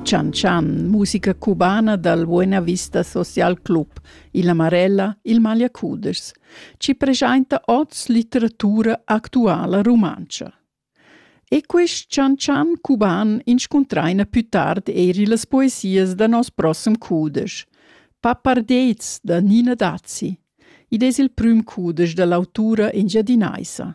Chan Chan, musica cubana dal Buena Vista Social Club, illa Marella, il Magliacudeschs, ci preschainta oz litteratura actuala rumantscha. E quist Chan Chan cuban inscuntraina più tard eir illas poesias da nos prossem cudesch, Papardets da Nina Dazzi. Id es il prüm cudesch da l'autura engiadinaisa.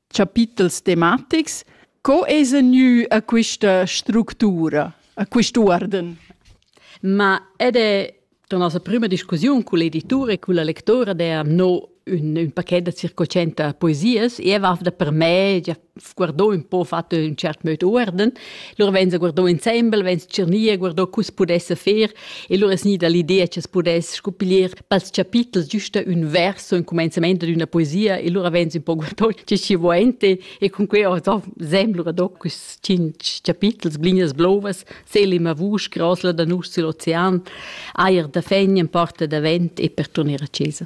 chapitels tematics. Co es gnü a quista structura, a quist'uorden? Ma ed è la nostra prima discussiun con l'editore e con la lectora der no un, un paquet da circocenta poesias e va da per me già guardò un po fatto in cert mood uorden lor wenn se guardò ensemble wenn tschirnia guardò cus pudesse fer E lura es gnida l'idea cha's pudess scuppiglier pels chapitels güsta ün verso in cumenzament d'üna poesia e lura vegns ün po guardond che chi vo ente e cun que ho do sem lura do quist cinch chapitels, blinas blovas, selim a vusch, grosla da nus sül ocean, ajer da fegn in porta davent e per turner a chesa.